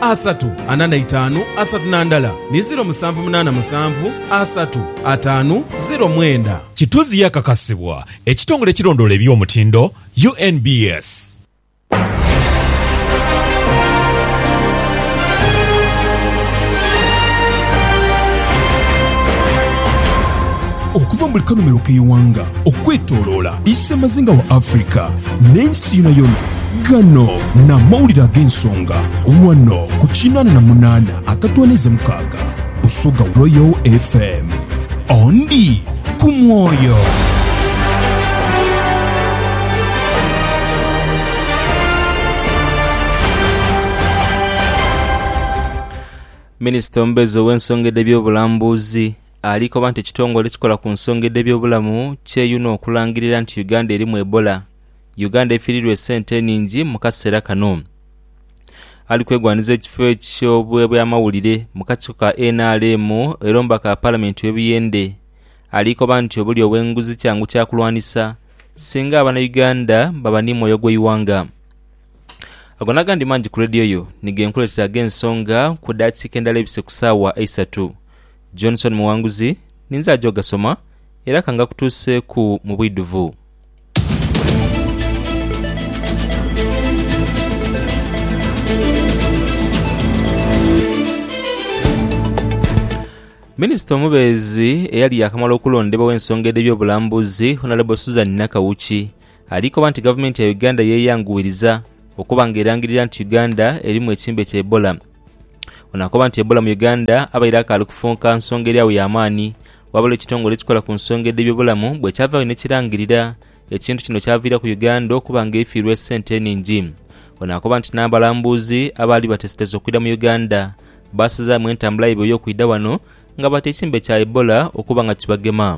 asatu ana na itaanu asatu na ndala ni ziro musanvu munaana musanvu asatu ataanu ziro mwenda. Kituzi yakakasibwa ekitongole ekirondoola eby'omutindo, UNBS. Okuva mu buli kanhumiro k'eighanga okwetoloola Isemazinga wa Africa n'ensi yonayona, Gano n'amawulire ag'ensonga wano ku kinaana na munaana akatwaniza mukaaga Busoga Royal FM. Ondi ku mwoyo. Minisita omubeezi ow'ensonga edh'ebyobulambuzi ali koba nti ekitongole ekikola ku nsonga edh'ebyobulamu kyeyuna okulangirira nti Uganda erimu Ebola. Uganda efiirirwa esente enhingi mu kaseera kano. Ali kwegwanhiza ekifo eky'obwamawulire mu kakiiko ka nrm era omubaka wa Palamenti ow'e Buyende ali koba nti obulyo obw'enguzi kyangu kya kulwanisa singa Abanauganda baba ni mwoyo gw'eighanga. Ago n'agandi mangi ku leediyo yo ni ge nkuleetera ag'ensonga ku daakiika endala ebise ku saawa eisatu. Johnson Muwanguzi ninze aja ogasoma era ka ngakutuuseeku mu bwidhuvu. Minisita omubeezi eyali yaakamala okulondebwa ow'ensonga edh'ebyobulambuzi, Honourable Suzan Nakawuki alikoba nti gavumenti ya Uganda yeeyanguwiriza okuba nga erangirira nti Uganda erimu ekimbe kya Ebola. Ono akoba nti Ebola mu Uganda abaire akaali kufunka nsonga eri agho ya maani ghabula ekitongole ekikola ku nsonga edh'ebyobulamu bwe kyavaagho ni kirangirira ekintu kino kyaviiraku Uganda okuba nga eifiirwa esente enhingi. Ono akoba nti n'abalambuuzi abaali bateesetese okwidha mu Uganda baasazaamu entambula yaibwe ey'okwidha ghano nga baata ekirembe kya Ebola okuba nga kibagema.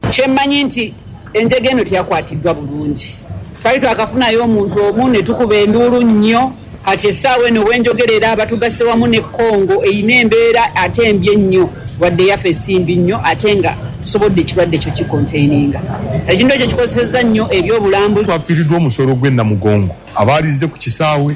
Kye mmanyi nti enjega eno tiyakwatiddwa bulungi. Twali twakafunayo omuntu omu ne tukuba enduulu nnyo. Kati essaawa eno we njogerera batugasse wamu ne Congo erina embeera ate mbi ennyo wadde yafe si mbi nnyo ate nga tusobodde ekirwadde kyo kikonteininga. Ekintu ekyo kikozesezza nnyo eby'obulambuzi. Twafiiriddwa omusolo gw'e Namugongo abaalizze ku kisaawe.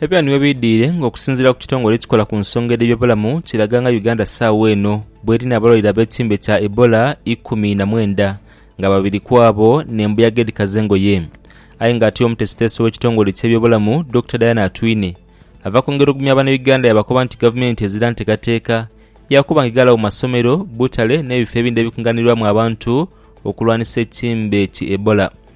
Ebyo ni webiidhiire nga okusinziira ku kitongole ekikola ku nsonga edh'ebyobulamu kiraga nga Uganda saagho eno bweri n'abalwaire ab'ekimbe kya Ebola ikumi na mwenda nga babiri kwabo n'embuyaga edhikaza engoye. Aye nga ate omutesiteesi ow'ekitongole eky'ebyobulamu Dokita Diana Atwine ava kwongera ogumya banauganda yabakoba nti gavumenti ezira ntekateeka yakuba nga eghalawo masomero, butale n'ebifo ebindi ebikunganirwamu abantu okulwanisa ekimbe ki Ebola.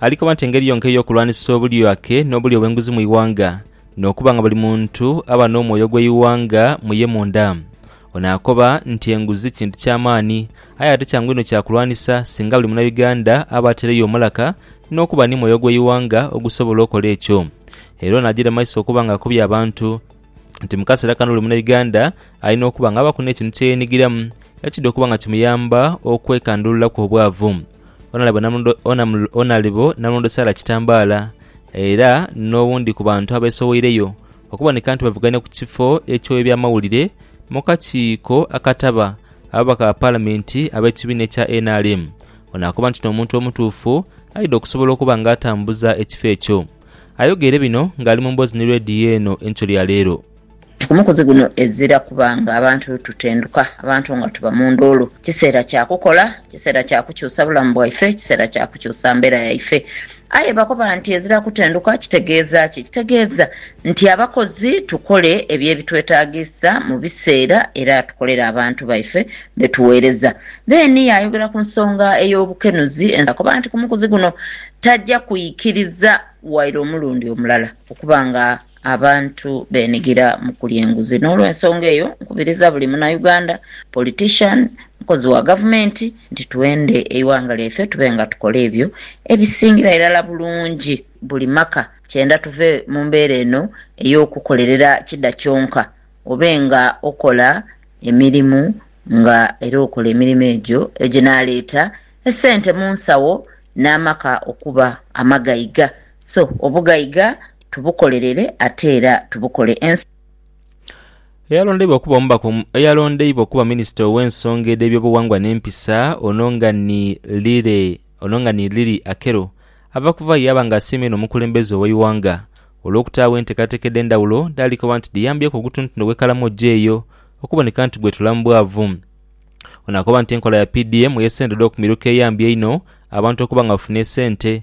Ali koba nti engeri yonka ey'okulwanisa obulyake n'obulyo bw'enguzi mu ighanga, n'okuba nga buli muntu aba n'omwoyo gw'eighanga mu ye munda. Ono akoba nti enguzi kintu kya maani, aye ate kyangu inho kya kulwanisa singa buli Munauganda aba ataireyo omulaka n'okuba ni mwoyo gw'eighanga ogusobola okola ekyo. Era ono agiire maiso okuba nga akubye abantu nti mu kaseera kano buli Munauganda alina okuba nga abaku n'ekintu kye yeenigiramu ekidha okuba nga kimuyamba okwekandululaku obwavu. Onalebo Namulondo Sarah Kitambala era n'owundi ku bantu abeesoweireyo okuboneka nti bavuganya ku kifo eky'owebyamawulire mu kakiiko akataba ababaka ba Palamenti ab'ekibiina ekya nrm ono akoba nti n'omuntu omutuufu aidha okusobola okuba nga atambuza ekifo ekyo. Ayogeire bino ng'ali mu mboozi ni leediyo eno enkyo lya leero. Ku mukuzi guno ezira kuba nga abantu tutenduka, abantu nga tuba mu nduulu. Kiseera kya kukola, kiseera kya kukyusa bulamu bwaife, kiseera kya kukyusa mbeera yaife. Aye bakoba nti ezira kutenduka kitegeeza ki? Kitegeeza nti abakozi tukole ebyo ebitwetaagisa mu biseera era tukolere abantu baife be tuweereza. Then yaayogera ku nsonga ey'obukenuzi, yakoba nti ku mukuzi guno taja kwikiriza waire omulundi omulala okuba nga. Abantu benigira mu kulya enguzi n'olwensonga eyo nkubiriza buli Munauganda, politician, mukozi wa gavumenti nti twende eighanga lyaife tube nga tukola ebyo ebisingira irala bulungi buli maka kyenda tuve mu mbeera eno ey'okukolerera kida kyonka obe nga okola emirimu nga era okola emirimu egyo eginaleeta esente mu nsawo n'amaka okuba amagaiga So obugaiga tubukolerere ate era tubukole ensi. Eyalondeibwa okuba omubaka omu eyalondeibwa okuba minisita ow'ensonga edh'ebyobughangwa n'empisa ono nga ni Lire ono nga ni Lily Akello ava kuva yaaba nga asiima inho omukulembeze ow'eighanga olw'okutaagho enteekateeka edh'endhawulo dhaali koba nti dhiyambyeku ogutunutunu gw'ekalamoja eyo okuboneka nti gwetula mu bwavu. Ono akoba nti enkola ya PDM ey'esente edh'okumiruka eyambye inho abantu okuba nga bafunye esente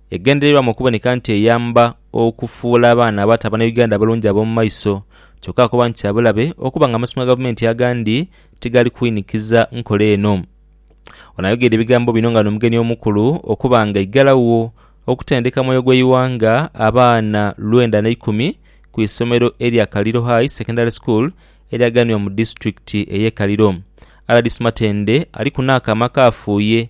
Egendererwa mu kuboneka nti eyamba okufuula abaana abato Abanauganda abalungi ab'omu maiso. Kyokka akoba nti kya bulabe okuba nga amasomero ga Gavumenti agandi tigali kwinikiza nkola eno. Ono ayogeire ebigambo bino nga n'omugenyi omukulu okuba nga aigalagho okutendeka Mwoyo gw'Eighanga abaana lwenda na ikumi ku isomero erya Kaliro High Secondary School eryaganibwa mu disitulikiti ey'e Kaliro. Rdc Matende aliku n'akaama akaafuuye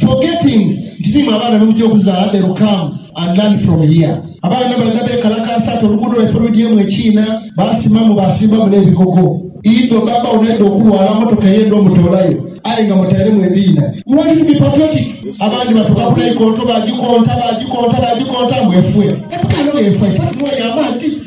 Forgetting nti nimwe abaana bemugya okuzaala they will come and learn from here. Abaana nibaidha bekalakaasa ati oluguudo lwaife lwidhyemu ekiina, baasimamu baasimbamu n'ebigogo. Idho bbaabba wo naidha okulwala, mmotoka eye ndhomutoolayo aye nga mutairemu ebiina. We want you to be patriotic. Abandi batuuka ku naikonto baagikonta, baagikonta, baagikonta mbu efwe. Ebukaale oyo efwa, ife tunooye amaadhi.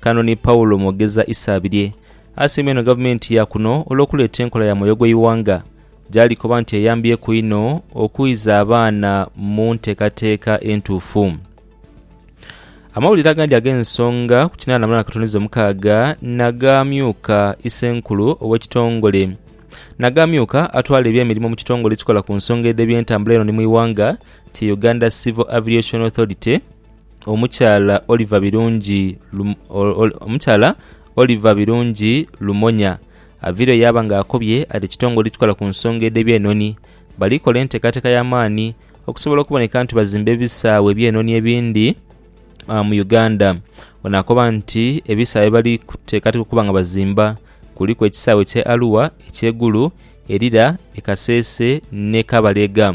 Kano ni Paulo mwogeza Isabirye. Asiima inho gavumenti ya kuno olw'okuleeta enkola ya Mwoyo gw'Eighanga, gy'ali koba nti eyambyeku inho okuiza abaana mu nteekateeka entuufu. Amawulire agandi ag'ensonga ku kinaana mulwana katoniza omukaaga na g'amyuka isenkulu ow'ekitongole na g'amyuka atwala eby'emirimo mu kitongole ekikola ku nsonga edh'ebyentambula eno ni mu ighanga kye Uganda Civil Aviation Authority, omukyala Oliver Birungi omukyala Oliver Birungi Lumonya aviireyo yaaba nga akobye ati ekitongole ekikola ku nsonga edh'ebyenhonhi bali kola enteekateeka ya maani okusobola okuboneka nti bazimba ebisaawe ebyenhonhi ebindi mu Uganda. Ono akoba nti ebisaawe bye bali kuteekateeka okuba nga bazimba kuliku ekisaawe eky'e Arua, eky'e Gulu, e Lira, e Kasese n'e Kabalega.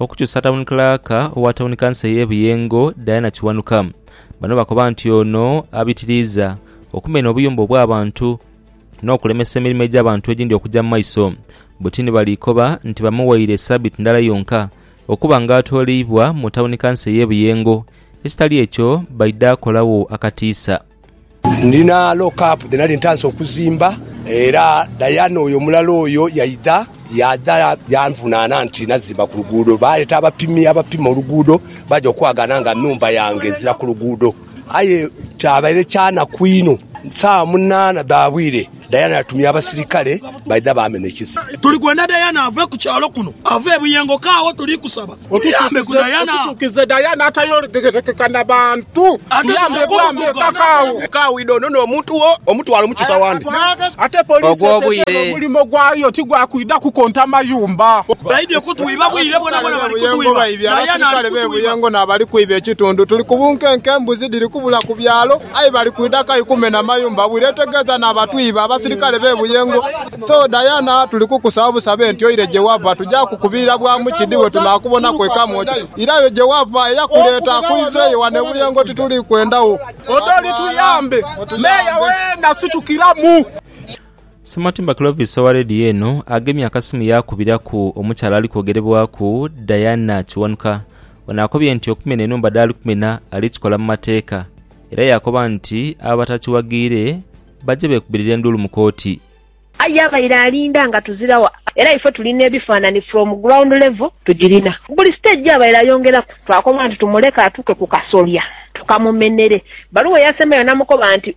Okukyusa Tawuni Kilaaka owa Tawuni Kanso ey'e Buyengo, Diana Kiwanuka. Bano bakoba nti ono abitiriiza okumenha obuyumba obw'abantu n'okulemesa emirimo egy'abantu egindi okuja mu maiso. Butini bali koba nti bamuwaire sabiiti ndala yonka okuba nga atooleibwa mu Tawuni Kanso ey'e Buyengo ekitali ekyo baidha kolagho akatiisa. Ndina lock-up dhe nali ntandise okuzimba era Diana oyo omulala oyo yaidha, yaadha yanvunaana nti nazimba ku luguudo. Baaleeta abapimi abapima oluguudo baja okwagaana nga nhumba yange ezira ku luguudo. Aye kyabaire kyanaku inho, saawa munaana dha bwire. Diana yatumya abasirikale baidha baamenhekiza. Tuli kwenda Diana ave ku kyalo kuno, ave e Buyengo kaagho. Tuli kusaba otuyambe ku Diana. Otutuukize Diana atayogerekeka na bantu. Tuyambe bwami eka kaagho. Eka widha ono n'omuntu wo omutwale omukise wandi. Ate poliisi etegeera omulimo gwayo ti gwa kwidha kukonta mayumba. Baidhye kutwiba bwire bwonabwona. Bali kutwiba Diana ali kutwiba. Abasirikale b'e Buyengo n'abali kwiba ekitundu. Tuli ku bunkenke, embuzi dhiri kubula ku byalo. Aye bali kwidha kai kumenha mayumba bwire etegeeza na batwiibe abasirikale be Buyengo. So Diana tuli kukusaba busabe nti oire gye wava tuja kukubirira bwa mu kidhi we tunakubonaku e Kamwokya. Ira yo gye wava eyakuleeta akuizeeyo wano e Buyengo tituli kwenda wo. Odoli tuyambe Meeya weena situkiramu. Sematimba Clovis owa leediyo eno agemye akasimu yaakubiraku omukyala ali kwogerebwaku Diana Kiwanuka Ono akobye nti okumena enhumba dhaali kumena ali kikola mu mateeka era yaakoba nti abo abatakiwaghiire baje beekubirire enduulu mu kooti. Aye abaire alinda nga tuzirawo era ife tuli n'ebifaanani from ground level tugirina. Ku buli stage gyabaire ayongeraku, twakoba nti tumuleke atuuke ku kasolya tukamumenere. Bbaluwa eyasembyeyo namukoba nti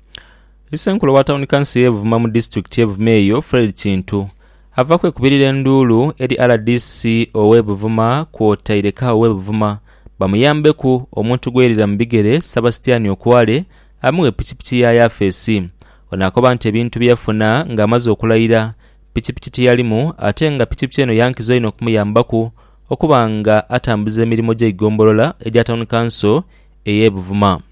Issenkulu wa tawuni kanso ye Buvuma mu disitulikiti ye Buvuma eyo Fred Kintu ava kwekubirira enduulu eri rdc owe Buvuma kwotaire kawo we Buvuma bamuyambeku omuntu gwerira mu bigere Sabastian Okware amughe pikipiki ya yafeesi Ono akoba nti ebintu byeyafuna nga amaze okulayira pikipiki tiyalimu ate nga pikipiki eno yankizo inho okumuyambaku okuba nga atambuza emirimo gye igombolola egya tawuni kanso eye Buvuma.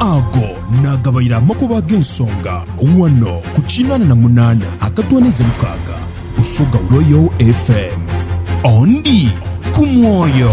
Ago naagabaire amakubo ag'ensonga ghano ku kinaana na munaana akatwaniza mukaaga Busoga Royal FM. Ondi ku mwoyo.